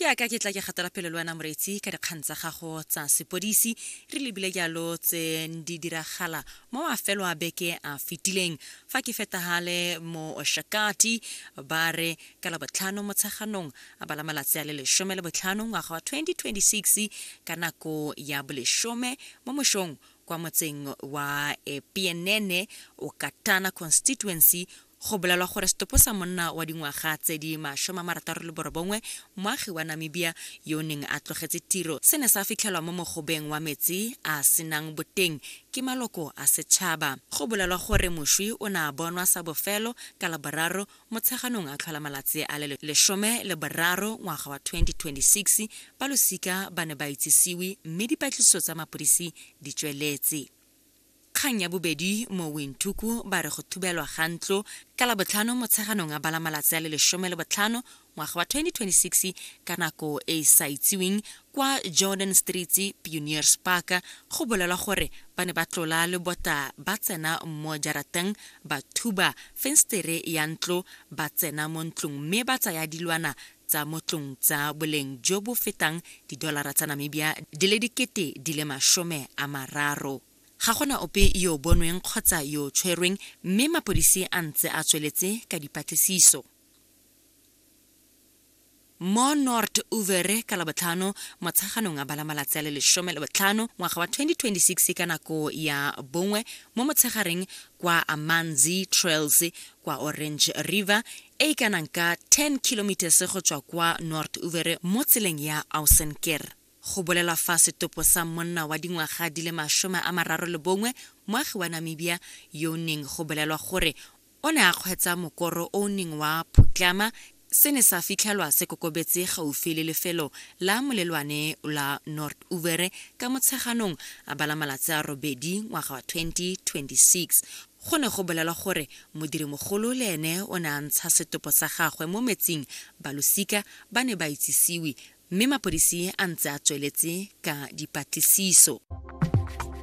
ke aka ke tla ke gatela pele le wena moreetsi ka dikgang tsa gago tsa sepodisi re lebile jalo tse di diragala mo mafelo a beke a fetileng fa ke fetagale mo oshakati ba re ka la botlhano motsheganong a bala malatsi a le lesome le botlhano ngwaga wa 2026 ka nako ya bolesome mo mošong kwa motseng wa epienene okatana constituency Go bolelwa gore setopo sa monna wa dingwaga tse di masome a marataro le borobongwe, moagi wa Namibia yo o neng a tlogetse tiro, se ne sa fitlhelwa mo mogobeng wa metsi a a senang boteng ke maloko a setšhaba. Go bolelwa gore moswi o ne a bonwa sa bofelo ka Laboraro Motsheganong a tlhola malatsi a le lesome le boraro ngwaga wa 2026. Ba losika ba ne ba itsisiwe mme dipatlisiso tsa mapodisi di tsweletse. Kgang ya bobedi mo Windhoek ba re go thubelwa ga ntlo ka Labotlhano Motsheganong a bala malatsi a le lesome le botlhano ngwaga wa 2026 ka nako e e sa itsiweng kwa Jordan Streets Pioneers Park go bolelwa gore ba ne ba tlola le bota ba tsena mo jarateng ba thuba fenstere ya ntlo ba tsena mo ntlong mme ba tsaya dilwana tsa mo tlong tsa boleng jo bo fetang didolara tsa Namibia di le dikete di le masome a mararo. Ga gona ope yo bonweng kgotsa yo tshwerweng mme mapodisi a ntse a tsweletse ka dipatlisiso. Mo Nort Uvere ka Labotlhano motsheganong a bala malatsi a le lesome le botlhano ngwaga wa 2026 ka nako ya bongwe mo motshegareng kwa Amanzi Trails kwa Orange River e e kanang ka 10 kilometers go tswa kwa North Uvere mo tseleng ya Ausenker. Go bolelwa fa setopo sa monna wa dingwaga di le masome a mararo le bongwe moagi wa Namibia yo o neng go bolelwa gore o ne a kgweetsa mokoro o o neng wa phutlama se ne sa fitlhelwa se kokobetse gaufi le lefelo la molelwane la North Uvere ka Motsheganong a bala malatsi a robedi ngwaga wa 2026. Go ne go bolelwa gore modirimogolo le ene o ne a ntsha setopo sa gagwe mo metsing, balosika ba ne ba itsisiwe mme mapodisi a ntse a tsweletse ka dipatlisiso.